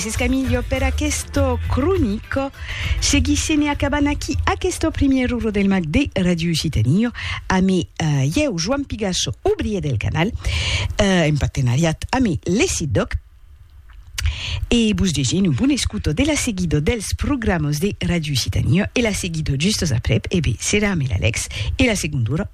Gràcies Camillo per aquesto cronico. Seguisse ne acabant aquí aquesto primièr uro del mag de Radio Occitanie ame ieu Joan Pigasso, obrier del canal, en partenariat ame l'ECIDOC. E vos desien un bon escuto de la seguido dels programos de Radio Occitanie e la seguido justos aprèp, e be, serà ame l'Alex e la segonda ora.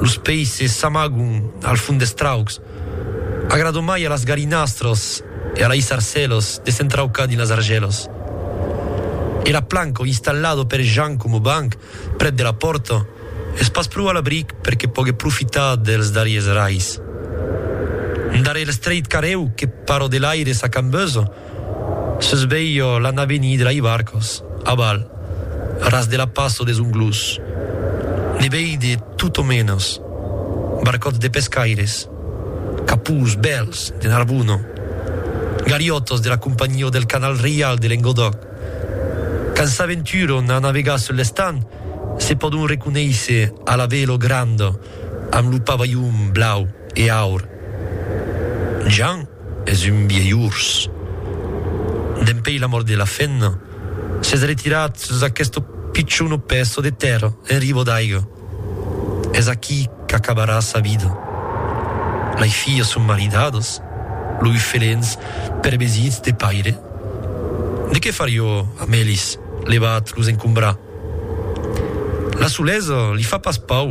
Los peisses s'amagon al fond des traucs. Agrado mai a las galinastras e a lei sarcèlas de s'entraucar dins las argèlas. E la planca installada per Jan coma banc prèp de la pòrta es pas pro a l'abric per que pogue profitar dels darriers rais. Darrèr l'estrait carrèu que para de l'aire s'acambesa, Sus veio l'ana venir de Laibarcos, aval, ras de la passo des Onglós. Ne veide tot o menos. Barcòts de pescaires, capús, bèls, de Narbona, galiòtos de la Companhió del Canal Reial de Lengodòc. Quand s'aventuron a navegar sul l'estanh, se pòdon reconéisser a la velo granda amb lo pavalhon blau e aur. Jan. Es un vièlh ors. Dempèi la mòrt de la fèna, s'es retirat sus aqueste pichon pèço de tèrra en riba d'aiga. Es aquí qu'acabarà sa vida. Lei filhas son maridadas, loi felens pervesits de paire. De qué farió amb elis? Levat los encombrar? La solesa li fa pas pau.